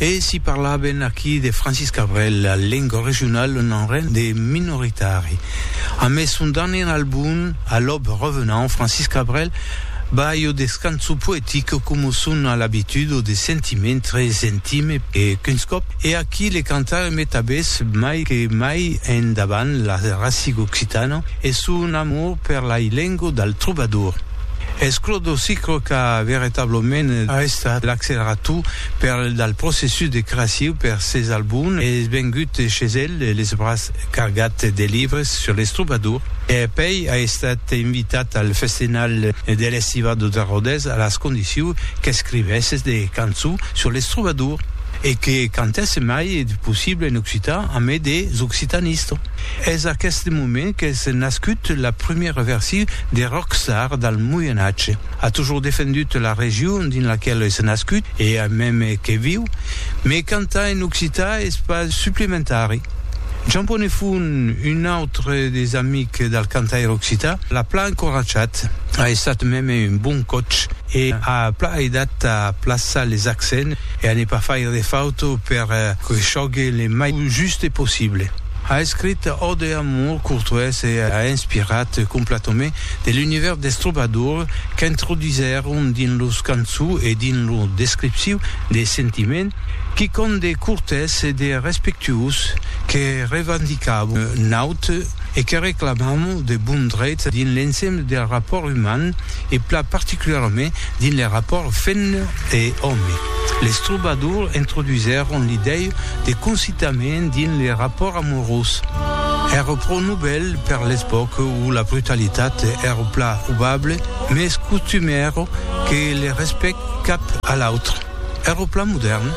E si parlaven aquí de Francis Cabrel, la lenga regionala n'en ren de minoritari. A mès son darnier album, a l'aube revenant, Francis Cabrel ba jo descanso poetic coma son a l'abitud o de sentiment tres intime e qu'uns còp e aquí le cantare met abés mai que mai en davant la rasiga occitana e son amor per la lenga del trobador. Es Clòdo Sicre qu'a veritablament estat l'accelerador Per dal processus de creaciu per ses albums es vengut chez el les bras cargat de libres sur les troubadours e pei a estat invitat al festinal de l'Estivado de Rodés a las condicius qu'escrivesse de cançons sur les troubadours e que cantèsse mai de possible en occitan amé des occitanistes. Es aqueste moment qu'es nascut la primièra versi de Rockstar dal Moyen Atge. A toujours defendut la region dins laquela es nascut e a meme que viu, me cantar en occitan es pas suplementari. Jean Bonefont, un autre des amics del cantaire occitan, l'a plan encoratjat, a estat meme un bon coach e a plan aidat a plaçar les accents e a ne pas faire de faute per que chògue le mai juste possible. A escrit Ode a Amour Courtois e a inspirat completament de l'univèrs des trobadors qu'introdusèron dins los cançons e dins lo descripciu de sentiment, quicòm de cortès e de respectuós que revendicam naut e que reclamam de bon dreit dins l'ensemble del rapòrt uman e plan particularament Dins le rapòrt femna e òme, les trobadors introduisèron l'idèia de concitament dins le rapòrt amorós. Èra pro novèl per l'epòca où la brutalitat èra pla obable, mes costumèra que le respèct cap a l'autre èra pla modèrn.